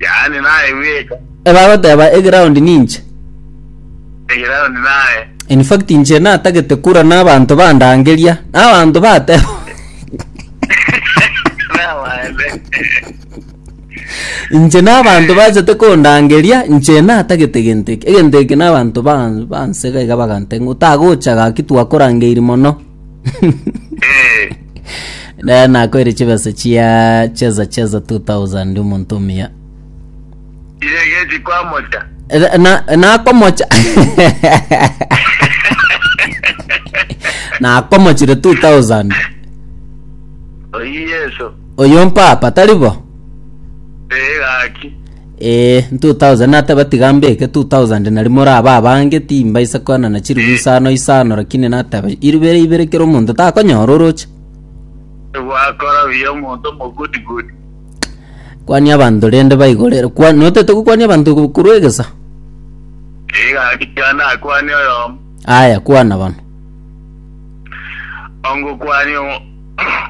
Yaani naye bweka. Ebagoteba eground ninche. Eground naye. In fact inche natagete kura na abanto bandangeria na abanto bateba inche na abanto bachete kondangeria inche natagete genteke egenteke na abanto bansega iga bagante otagocha gaki twakorangeiri mono Eh, Naye nakoire chibesa chia cheza cheza 2000 omonto omuya. iregeti kwa mocha. Eh, Na nakomocha. Nakomochire 2000. Oyi Yesu. Oyo mpapa taribo. Eh, gaki. Ee, ntwo thousand nateba tiga mbeke two thousand nari more aba abange timbaisa koanana chiribu isano isano lakini nateba ibere ibere kera omonto takonyora oroche Gwakora buya omonto omogudigudi. kwania abanto rende baigorere kwa notete gokwania abanto go- korwa egesa Igakikana akwane oyomo. aya kwana bano Ongokwani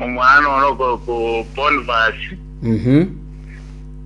omwana ono ko- ko Bonifasi. mhm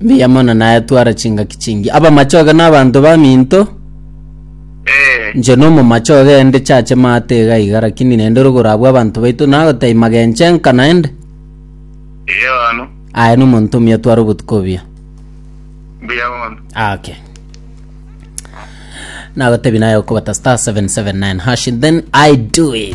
Mbuya mono naye twara chingaki chingi. Abamachoge na abanto baminto. Eh, Nche nomomachoge ende chache maate iga iga lakini nende rogoro abwo abanto baito nagotaima genche nka naende. iyo ano. Aye nomonto omuya twara obotuko obuya. Mbuya mono. Okay. Nagotebi naye okobata star 779 hash then I do it.